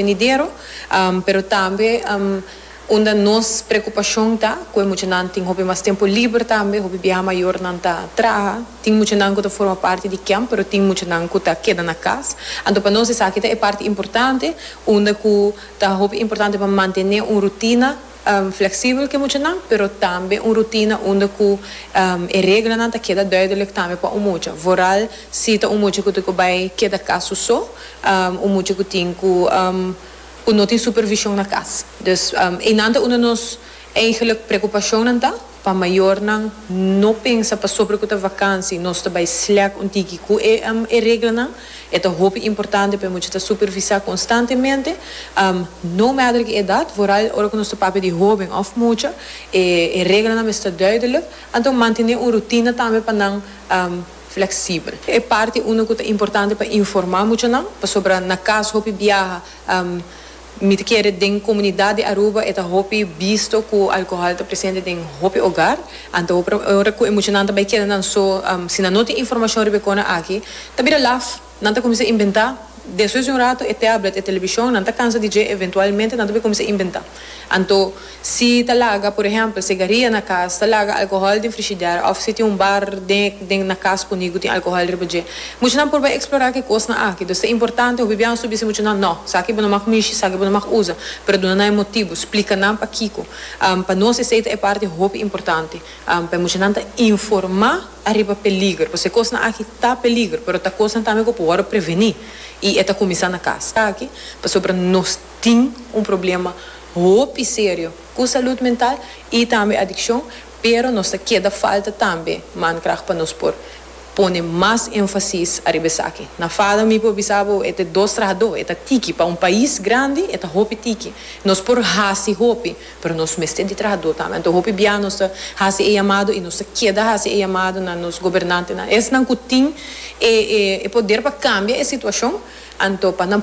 venidero, pero tambe unda nos preocupacion ta cu e muchanan tin hopi mas tempo liber tambe, hopi biaha mayornan ta traha, tin muchanan cu ta forma parti di camp pero tin muchanan cu ta keda na cas, anto pa nos esaki ta e parti importante unda cu ta hopi importante pa mantene un rutina. Fleksibel ke muchanan, pero tambe un rutina unda ku e reglanan ta keda duidelek tambe pa un mucha. Vooral si ta un mucha ku tin ku bai keda kas su so, un mucha ku tin ku ku no tin supervishon na kas. Dus einan ta unda nos eigelik preokupashonnan ta, pa mayornan no pensa pasobra ku ta vakansi nos ta bai slèk un tiki ku e reglanan. E ta hopi importante pa e mucha ta supervisá konstantemente, no matter ki edat, vooral ora ku nos ta papia di hóben òf mucha. E e reglanan mester duidelik, anto mantené un rutina tambe pa nan fleksibel. E parti uno ku ta importante pa informá muchanan, pasobra na kas hopi biaha, Mi ta kere den komunidat di Aruba e ta hopi bisto ku alkohòl ta presente den hopi ogar. Anto hopi ora ku e muchanan ta bai keda nan so, si nan no tin informashon riba e kona aki, ta bira laf, nan ta kuminsá inventá. Despues di un ratu e tèblet, e telebishon, nan ta kansa di dje, eventualmente nan ta bai kuminsá inventá. Anto. Si ta laga, por ehempel, segaria na cas, ta laga alcohol den frishider of si tin un bar den den na cas puni cu tin alcohol riba dje. Muchanan por bai explora ki cosnan aki. Dos ta importante hopi biaha su bisa muchanan, No, saki bo no mag mishi, saki bo no mag usa. Pero duna nan e motibu, splica nan pakico. Pa nos esey ta e parti hopi importante. Pa e muchanan ta informa ariba peliger. Pasobra e cosnan aki ta peliger, pero ta cosnan tambe cu por worde preveni. Y e ta cuminsa na cas. Taki pasobra nos. tin un problema hopi serio cu salud mental y tambe adiccion, pero nos ta keda falta tambe mankracht pa nos por pone mas enfasis ariba esaki. Na Fado mi por bisa bo e ta dos traha do, e ta tiki, pa un pais grandi e ta hopi tiki. Nos por haci hopi, pero nos mester di traha do tambe. Anto hopi bia nos ta haci e yamado y nos ta keda haci e yamado na nos gobernantenan, esnan cu tin e poder pa cambia e situacion, anto pa nan.